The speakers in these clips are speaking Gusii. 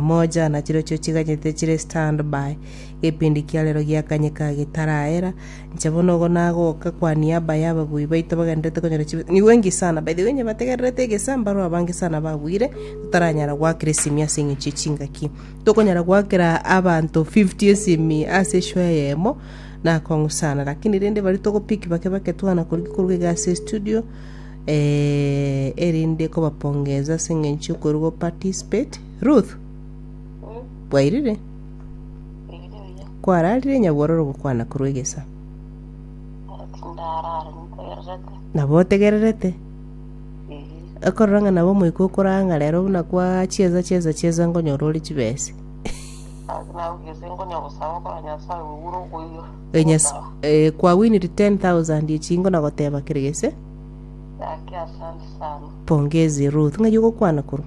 Moja na chirochio chiganyete chire stand by, gepindi kia rero giakanyeka gitaraera, inche bono igo nagoka kwa niaba ya ababui baito bagendererete konyora chibesa, nigo enki sana, by the way inye bategererete egesa mbarwe abange sana babuire, totaranyara goakera esimi ase eng'encho ye chingaki, tokonyara goakera abanto 50 esimi ase eshow eyemo, nakong'u sana, lakini rende baria togo pick bake bake twana koruga koruga iga ase estudio, eh, erinde kobapongeza ase eng'encho yokoruga o participate. Ruth, bwairire? Kwararire nyabwororo gokwana korwa egesa. Nabo otegererete? Ekorora ng'a nabo omoika okoraa ng'a rero buna kwachiesa chiesa chiesa nkonyora ore chibese. E nyas- eh, kwawiniri 10,000 echi ingo nagoteba kere gese. Pongezi Ruth, ng'ai ogokwana korwa?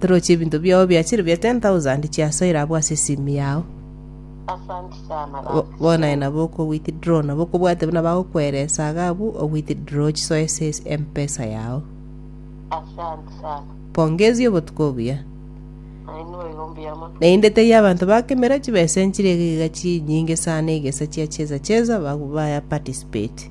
Toroche ebinto biao biachire bia 10,000 chiasoire abwo ase esimi yao. Bono aye nabo oko withdraw nabo okobwate buna bagokwera esaga abwo o withdraw chisoe ase mpesa yao. Pongezi obotuko obuya. Naende teiyo abanto ba kemera chibesa enchire iga iga chinyinge sana egesa chia cheza cheza babu baya participate.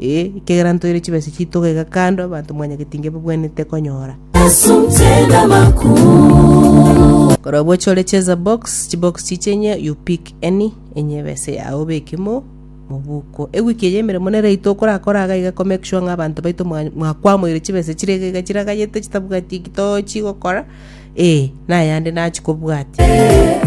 Ee, ekiagera ntoire chibesa chiito gaiga kando, abanto mwanyagete inge babwenerete konyora. Korwa boche ore cheza box, chibox chiche enye you pick any enye ebese yao obeke mo mobuko. Ewiki eye emeremo nere yaito okorakora iga iga ko make sure ng'a abanto baito mwa- mwakwamoire chibesa chire iga iga chiraganyete chitabwati eki tochi gokora, ee, na ayande nachi kobwatia.